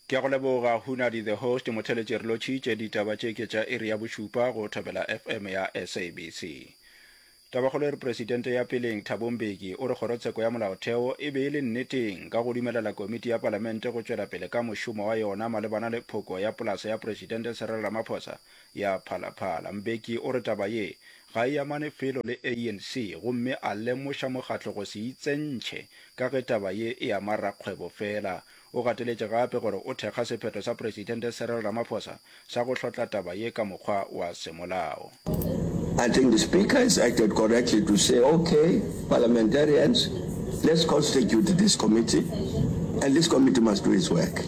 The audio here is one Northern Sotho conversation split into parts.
Ke a go leboga Hunadi the host motheletše re lotšhitše ditaba tše ke tša iri ya bošupa go Thobela FM ya SABC. Tabakgolo e re Presidente ya peleng Thabo Mbeki o re kgorotsheko ya molaotheo e be e le nneteng ka go dumelela komiti ya palamente go tšwela pele ka mošomo wa yona malebana le phoko ya polasa ya Presidente Cyril Ramaphosa ya Phalaphala. Mbeki o re taba ye ga e amane felo le ANC gomme a lemoša mokgatlo go se itsentšhe ka ge taba ye e ama rakgwebo fela. O gateletše gape gore o thekga sephetho sa Presidente Cyril Ramaphosa sa go hlotla taba ye ka mokgwa wa semolao. I think the Speaker has acted correctly to say, ok, Parliamentarians, let's constitute this committee and this committee must do its work.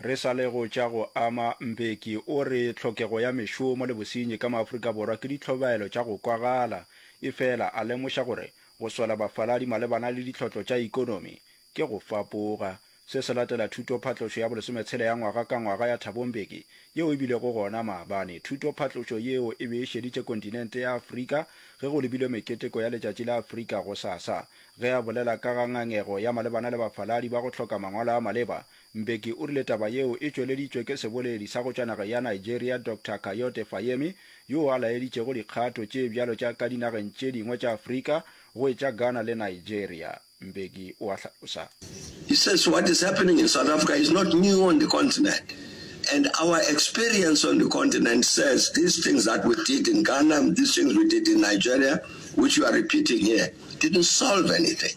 Re sa le go tša go ama, Mbeki o re tlhokego ya mešomo le bosenyi ka maAfrika Borwa ke ditlhobaelo tša go kwagala, efela a lemoša gore go swela bafaladi malebana le ditlhotlo tša ikonomi ke go fapoga. Se se latela thutophatlošo ya bolesometshela ya ngwaga ka ngwaga ya Thabo Mbeki yeo e bilego gona maabane. Thutophatlošo yeo e be e šeditše kontinente ya Afrika ge go lebilwe meketeko ya Letšatši la Afrika gosasa. Ge a bolela ka ga ngangego ya malebana le bafaladi ba go hloka mangwalo a maleba, Mbeki o rile taba yeo e tšweleditšwe ke seboledi sa go tšwa nageng ya Nigeria Doctor Kayode Fayemi yoo a laeditšego dikgato tše bjalo tša ka dinageng tše dingwe tša Afrika go e tša Ghana le Nigeria. Mbeki o a hlalosa. He says what is happening in South Africa is not new on the continent and our experience on the continent says these things that we did in Ghana, these things we did in Nigeria which you are repeating here didn't solve anything.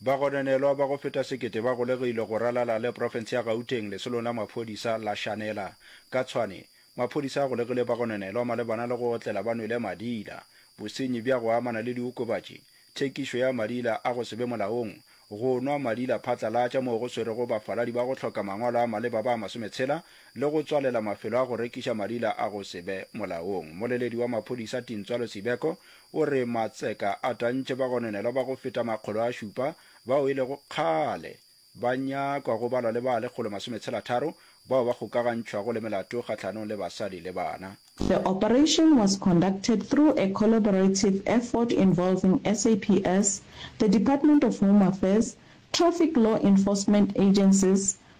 Bagononelwa ba go feta sekete ba golegilwe go ralala le profense ya Gauteng lesolong la maphodisa la Shanela. Ka tshwane, maphodisa a golegile bagononelwa malebana le go otlela ba nwele madila, bosenyi bja go amana le diokobatši, thekišo ya madila a go se be molaong, go nwa madila phatlalatša moo go swerego bafaladi ba go hloka mangwalo a maleba ba masometshela le go tswalela mafelo a go rekiša madila a go se be molaong. Mmoleledi wa maphodisa Tintswalo Sibeko O re matseka a tantše bagononelwa ba go feta makgolo a šupa bao e lego kgale ba nyakwa go balwa le ba lekgolo masometshela-tharo bao ba kgokagantšhwago le melato kgahlanong le basadi le bana. The operation was conducted through a collaborative effort involving SAPS, the Department of Home Affairs, Traffic Law Enforcement Agencies,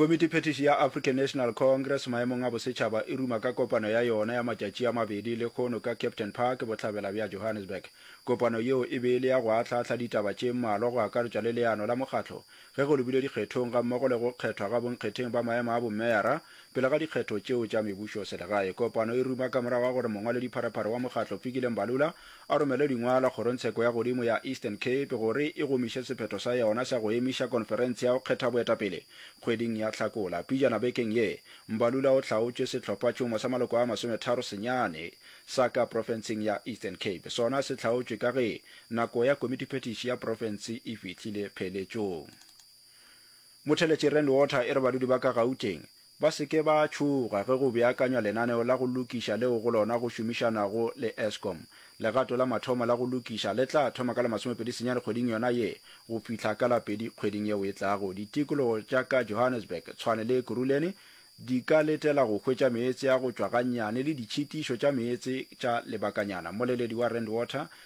Komitiphethiši ya African National Congress maemong a bosetšhaba e ruma ka kopano ya yona ya matšatši a mabedi lekgono ka Captain Park bohlabela bja Johannesburg. Kopano yeo e be e le ya go ahlaahla ditaba tše mmalwa go akaretšwa le leano la mokgatlo ge go lebilwe dikgethong gammogo le go kgethwa ga bonkgetheng ba maemo a bommeara pele ga dikgetho tšeo tša mebušoselegae. Kopano e ruma ka morago ga gore mongwaledi-pharephare wa mokgatlo Fikile Mbalula a romele dingwalo Kgorongtsheko ya Godimo ya Eastern Cape gore e gomiše sephetho sa yona sa go emiša konferense ya go kgetha boetapele kgweding ya Hlakola. Pejana bekeng ye, Mbalula o hlaotše sehlophatšhomo sa maloko a masometharo senyane sa ka profenseng ya Eastern Cape. Sona se hlaotšwe ka ge nako ya komitiphethiši ya profense e fihlile pheletšong. Motheletši Rand Water e re badudi ba ka Gauteng Ba se ke ba tšhoga ge go beakanywa lenaneo la go lokiša leo go lona go šomišanago le Eskom. Legato la mathomo la go lokiša le tla thoma ka la masomepedi senyane kgweding yona ye go fihla ka la pedi kgweding yeo e tlago. Ditikologo tša ka Johannesburg, Tshwane le Ekurhuleni di ka letela go hwetša meetse a go tšwa gannyane le ditšhitišo tša meetse tša lebakanyana. Mmoleledi wa Rand Water,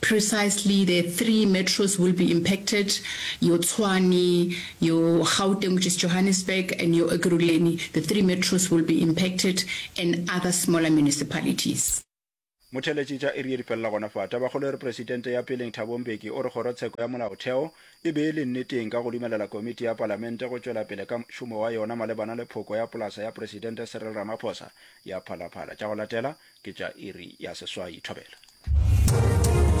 Precisely the three metros will be impacted, your Tshwane, your Gauteng which is Johannesburg and your Ekurhuleni, the three metros will be impacted and other smaller municipalities. Motheleci tša iri ye di felela gona fa. Tabakgolo e re Presidente ya peleng Thabo Mbeki o re kgorotsheko ya molaotheo e be e le nneteng ka go dumelela komiti ya palamente go tšwela pele ka mošomo wa yona malebana le phoko ya polasa ya Presidente Cyril Ramaphosa ya phalaphala. Tša go latela ke tša iri ya seswai. Thobela.